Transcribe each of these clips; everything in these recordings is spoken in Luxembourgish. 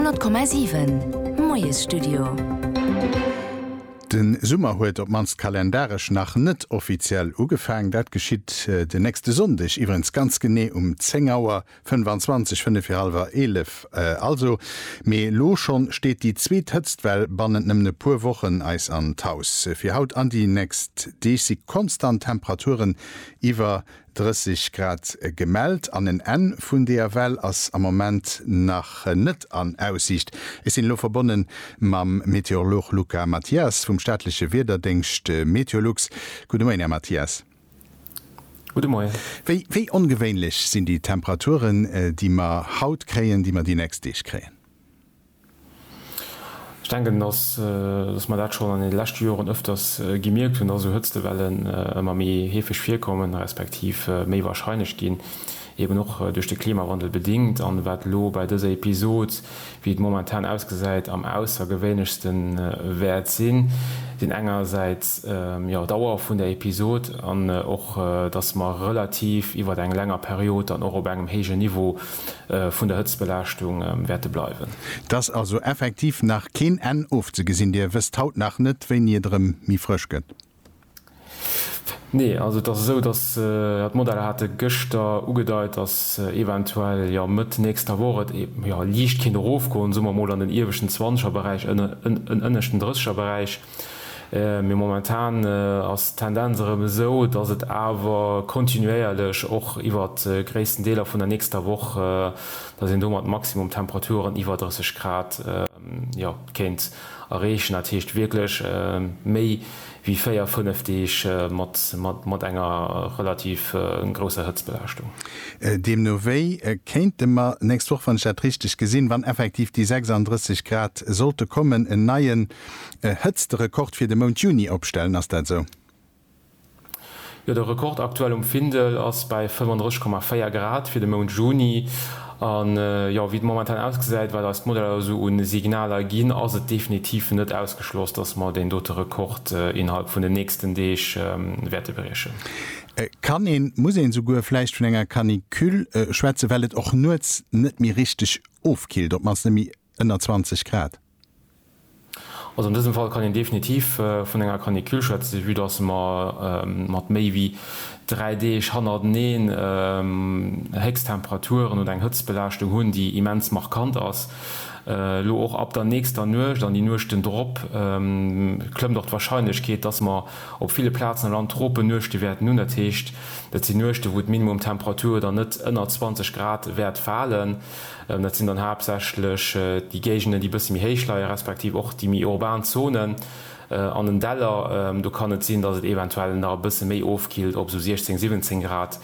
100,7 Moiesstudio. De Summer huet, op d'mannst kalendaresch, nach net offiziell ugefaang. Dat geschitt den nächste Sonndeg iwwerens ganz genee um 10 Auer 25, fënnef fir hallwer eelef also. Mee elo schonn steet déi zweet Hëtztwell bannent nëmmen e puer Wochen eis an d'Haus. Fir haut an déi nächst Deeg si konstant Temperaturen iwwer 30 Grad gemellt an en Enn vun deeër Well ass am Moment nach net an Aussiicht. Ech sinn elo verbonne mam Meteorolog Luca Mathias vum staatleche Wiederdéngscht Meteolux. Gudde Moien, Här Mathias. Gudde Moien. Wéi, wéi ongewéinlech sinn déi Temperaturen, déi mer haut kréien, déi mer déi nächst Deeg kréien? Ech denken, dass mer dat schonn an deene leschte Joren öfters gemierkt hunn, dass esou Hëtztewellen ëmmer méi heefeg virkommen, respektiv méi warscheinlech ginn, eben och duerch de Klimawandel bedingt. An wat elo bei dëser Episod, wéi et momentan ausgesäit, am aussergewéinlechste wäert sinn, sinn engersäits, jo, d'Dauer vun der Episod an och, dass mer relativ iwwert eng länger Period dann och op engem héijen Niveau vun der Hëtztbelaaschtung wäerte bleiwen. Et ass also effektiv nach keen Enn ofzegesinn. Dir wësst haut nach net, wéini et erëm méi frësch gëtt? Nee, also et ass esou, datt, ja, d'Modeller hate gëschter ugedeit, datt eventuell, jo, Mëtt nächster Woch et, jo, liicht kéint erofgoen, soe mer emol an den ieweschten Zwanzegerberäich, en ënneschten Drëssegerberäich. Mee momentan ass d'Tendenz erëm esou, dass et awer kontinuéierlech och iwwer gréissten Deeler vun der nächster Woch, dass een do mat Maximumtemperaturen iwwer 30 Grad kéint erreechen. Dat heescht wierklech méi wéi véier, fënnef Deeg mat enger relativ grousser Hëtztbelaaschtung. Deemno wéi kéinte mer nächst Woch, wann ech dat richteg gesinn, wann effektiv déi 36 Grad sollte kommen, en neien E Hëtzterekord fir de Mount Juni opstellen, ass dat esou? Jo, de Rekord aktuell um Findel ass bäi 35,4 Grad fir de Mount Juni. An jo, wéi et momentan ausgesäit, wat eis d'Modeller esou u Signaler ginn, ass et definitiv net ausgeschloss, dass mer deen dote Rekord innerhalb vun den nächsten Deeg wäerte briechen. Kann een, muss een esouguer vläicht vun enger Canicule schwätzen, well et och nuets net méi richteg ofkillt, op d'mannst net méi ënner 20 Grad? Also an dësem Fall kann een definitiv vun enger Canicule schwätzen, vue datt mer mat méi wéi dräi Deeg hannerteneen Héchsttemperaturen oder eng Hëtztbelaaschtung hunn, déi immens markant ass. Elo och ab der nächster Nuecht an déi Nuechten drop klëmmt och d'Warscheinlechkeet, datt mer op ville Plazen am Land Tropennuechte wäerten hunn. Dat heescht, dat sinn Nuechten, wou d'Minimumtemperatur dann net ënner 20 Grad wäert falen. Dat sinn dann haaptsächlech déi Géigenden, déi e bësse méi héich leie respektiv och déi méi urban Zonen an den Däller. Do kann et sinn, datt et eventuell nach e bësse méi ofkillt op esou 16, 17 Grad.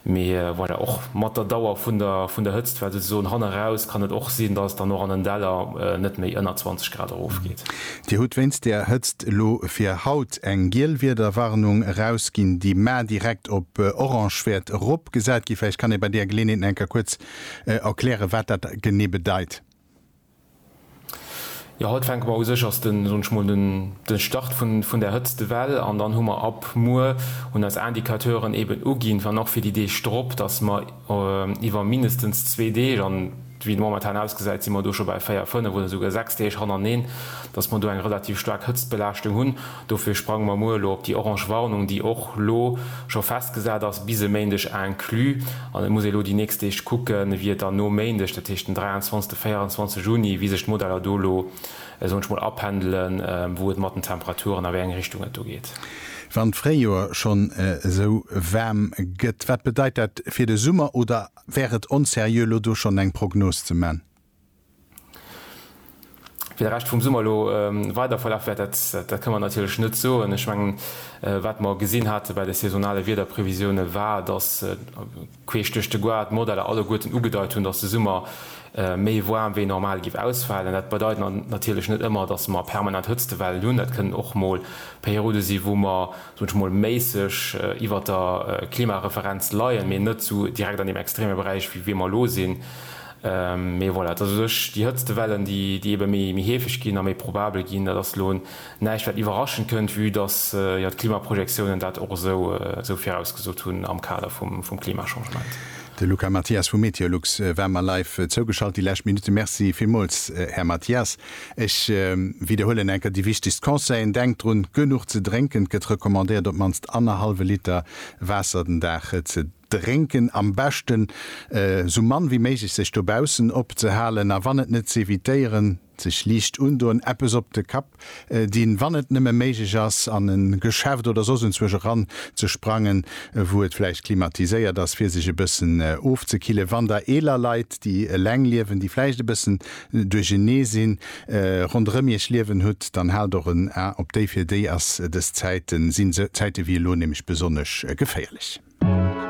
Mee voilà, och mat der Dauer vun der Hëtzt, well souzesoen han eraus, kann et och sinn, datt et dann och an den Däller net méi ënner 20 Grad erofgeet. Dir hutt wéinst der Hëtzt elo fir haut eng giel Wiederwarnung erausginn, déi mar direkt op orange wäert eropgesat ginn. Vläicht kann ee bei där Geleeënheet nach enker kuerz erklären, wat dat genee bedeit. Jo, haut fänke mer u sech, ass den, soen ech mol, den Start vun där hëtzte Well. An dann hu mer ab muer, hunn eis Indicateuren eben uginn, wann och fir déi Deeg drop, dass mer iwwer mindestens zwee Deeg, an wéi et momentan ausgesäit, si mer do scho bäi véier, fënnef oder esouguer sechs Deeg hannereen, dass mer do eng relativ staark Hëtztbelaaschtung hunn. Dofir sprange mer muer elo op déi orange Warnung, déi och elo scho festgesat ass, bis e Méindeg inclus. An et muss ee elo déi nächst Deeg kucken, wéi et dann no Méindeg, dat heescht den 23, 24 Juni, wéi sech d'Modeller do elo soen ech mol apendelen, wou et mat den Temperaturen, a wéi eng Richtung et do geet. Wann d'Fréijoer schonn esou waarm gëtt, wat bedeit dat fir de Summer? Oder wär et onseriö elo do schonn eng Prognos ze man? Wéi de Rescht vum Summer elo weider verlaf wäert, dat kënne mer natierlech net soen. Ech mengen, wat mer gesinn hate bei de saisonale Wiederprevisioune war, datt queesch duerch de Goart d'Modeller alleguerten ugedeit hunn, datt de Summer méi waarm wéi normal géif ausfalen. Dat bedeit natierlech net ëmmer, datt mer permanent Hëtztewellen hunn. Dat kënnen och mol Periode sinn, wou mer, soen ech mol, méisseg iwwer der Klimareferenz leien, mee net esou direkt an deem extreme Beräich, wéi mer elo sinn. Mee voilà, et ass u sech déi Hëtztewellen, déi ebe méi heefeg ginn a méi probabel ginn. Dat ass elo näischt, wat iwwerraschend kënnt, vue dass d'Klimaprojektiounen dat och esou virausgesot hunn am Kader vum Klimachangement. De Luca Mathias vu Meteolux war mer live zougeschalt déi lescht Minutte. Merci villmools, Här Mathias. Ech widderhuelen eng Kéier déi wichtegst Conseillen, Denkt drun, genuch ze drénken. Et gëtt recommandéiert, op d'mannst annerhallwe Liter Waasser den Dag ze. Drénken, am beschten esou mann wéi méiglech sech dobaussen opzehalen a wann et net z'evitéieren, sech liicht undoen, eppes op de Kapp dinn, wann et nëmme méiglech ass an en Geschäft oder soss enzwuesch eran ze sprangen wou et vläicht klimatiséiert ass fir sech e bëssen ofzekillen. Wann der eeler Leit déi eleng liewen, déi vläicht e bëssen duerchenee sinn, ronderëm iech liewen hutt, dann haalt och en A op déi, fir déi ass dës Zäiten, sinn esou Zäite wéi elo nämlech besonnesch geféierlech.